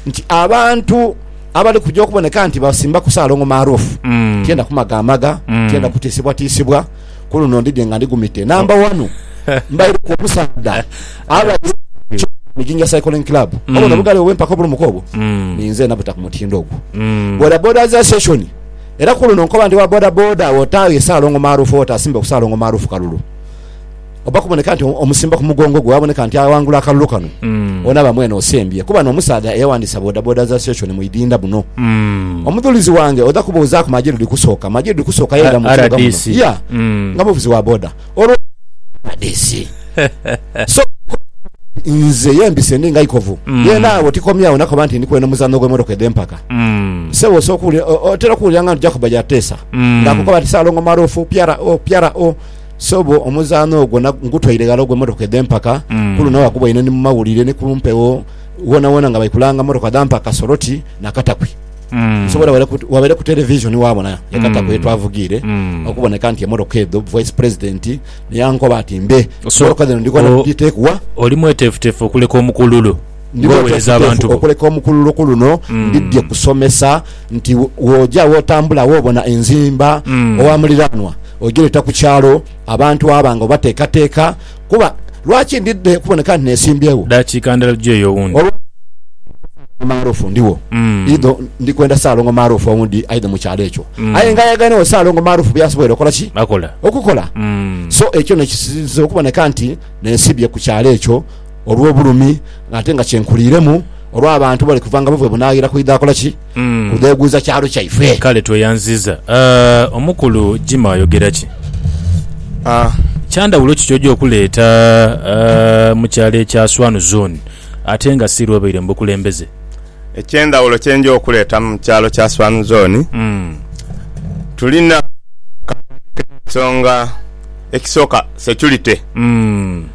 nti abantu abali kuja okuboneka nti basimbaku Salongo maarufu, tienda kumagaamaga, tienda kutiisibwatiisibwa. Ku luno ndidhie nga ndi gumite namba wanu, mbaireku omusaadha abadde chairman wa Jinja Cycling Club. Obona obugaali obwo bwe mpaka obulumuka obwo? Ninze nabuta ku mutindo ogwo. Bodaboda za Session era ku luno nkoba nti owa bodaboda otaaghe Salongo maarufu oba otaasimbeku Salongo maarufu kalulu. oba kuboneka nti omusimba ku mugongo gwe waboneka nti awangula akalulu kano mm. onaaba mwene osembye kuba n'omusaadha eyawandiisa bodaboda za seshoni mu idinda buno mm. omudhulizi wange odha kubuuzaaku majiru dhikusooka majiru dhikusooka yera mu kibuga muno ya mm. nga muvuzi wa boda olwo rdc so nze yembise ndi nga ikovu mm. ye naawe tikomyawo nakoba nti ndi kwena omuzanno gw'emotoka edh'empaka mm. sebo osobola otera okuwulira nga nti jakuba yateesa mm. ng'akukoba nti saalongo maruufu pyara o pyara o Sobo, omuzaano ogwo na, ngutwaire ghala ogwe motoka edhe mpaka. Mm. Ku luno waguboine ni mu mawulire ni ku mpewo wonawona nga bali kulanga motoka dha mpaka Soroti na Katakwi. Mm. Nsobo era wabaire ku, wabaire ku televisioni wabona ya Mm. Katakwi ye twavugiire Mm. okuboneka nti emotoka edho Vice President ni yankoba ati mbe So, emotoka dhino ndhigwa na o- kudhiteeku wa? Oli mweteefuteefu okuleka omukululu? Ndi mweteefuteefu okuleka omukuluruku luno ndidhie kusomesa nti wooja wotambula wobona enzimba owa muliraanwa ojireeta ku kyalo abantu aba nga obateekateeka kuba lwaki ndidha kuboneka nti nesimbyewo? Dakika ndala tuje yo owundi. Olwo Saalongo Maarufu ndiwo idho ndi kwenda Saalongo Maarufu owundi aidhe mu kyalo ekyo aye nga ayagane wo Saalongo Maarufu byasoboire okola ki? Okukola. So ekyo nekisinze okuboneka nti nensibye ku kyalo ekyo. olw'obulumi ng'ate nga kyenkuliiremu olw'abantu bali kuva nga buvwe bunaaghira kwidha akola ki? Kudheeguuza kyalo kyaife. Kale tweyanziza. Omukulu Jimmy ayogera ki? Kya ndhawulo ki ky'oja okuleeta mu kyalo ekya Swanu Zooni ate nga si lw'obaire mu bukulembeze? Eky'endhawulo kye nja okuleeta mu kyalo kya Swanu Zooni, tulina, ka ntandike n'ensonga ekisooka, security.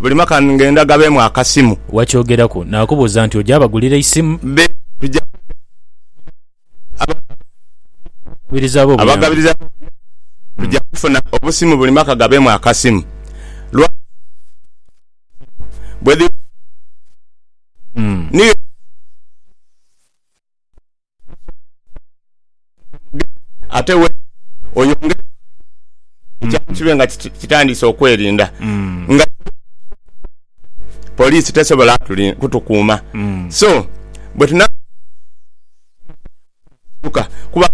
Buli mwaka ngenda gabeemu akasimu. Wakyogeraku nakubuuza nti oja bagulira eisimu? Be tuja Abagabiriza bo obuyambi. Abagabiriza bo obuyambi tuja kufuna obusimu buli mwaka gabeemu akasimu. Lwaki bwedhibaaku akasimu niyo ensonga lwaki tuja kufuna obusimu buli mwaka. ate we oyongere ekyaalo mm. kibe nga kitandise okwerinda mm. nga poliisi tesobola kutukuuma mm. so bwe tuna kuba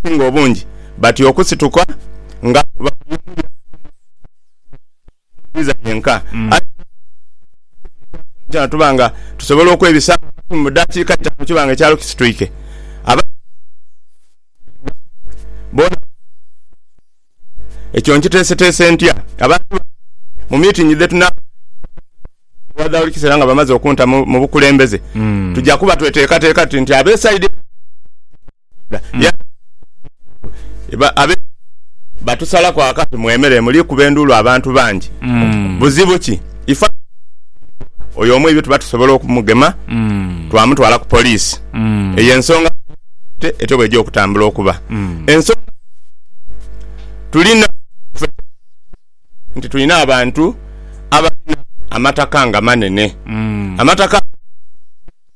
singa obungi bati okusituka nga Omuzibiza yenka aidha okutuleetera ekyafaayo kyona tuba nga tusobola okwebisaamu amasimu mu daakiika itaanu kiba nga ekyalo kisitwike. Abazadde abasinga obungi bona basobola okwebisaamu. Ekyo nkiteeseteese ntya? Abantu bangi mu miitingi dhe tunaabaamu baidha n'okuntwala ewa Dhauli kiseera nga bamaze okunta mu bukulembeze. Tuja kuba tweteekateeka tuti nti ab'esaidi eyo baba basobola okuntegeera. Yuda. Yandhibadde nga abeefuula ab'enjawulo. Batusalaku akati mu emere muli kuba enduulu abantu bangi. Buzibu ki? Ife abaana b'Omutukuvu oyo omu ebyo tuba tusobola okumugema twamutwala ku poliisi. Eyo y'ensonga lwaki Bbaibbuli etyo bw'eja okutambula okuba. Ensonga y'okubiri, tulina okuba n'ekigendererwa nti tulina abantu abalina amataka nga manene. Amataka ago g'omulembe guno.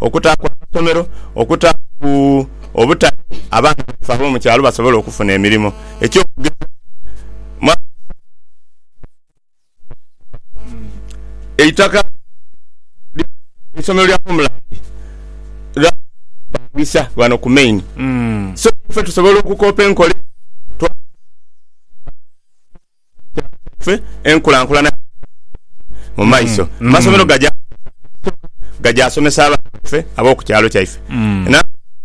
okutaaku amasomero, okutaaku obutale abaana baife ab'omu kyalo basobole okufuna emirimo. Eky'okugeza mwaka guno eitaka eisomero lya Homeland lyalipangisa ghano ku Main so ife tusobola okukoopa enkola eno. kyaife enkulankulana ya sayansi mu maiso. Amasomero gaja kukozesa ekisoka gaja somesa abaana baife ab'oku kyalo kyaife.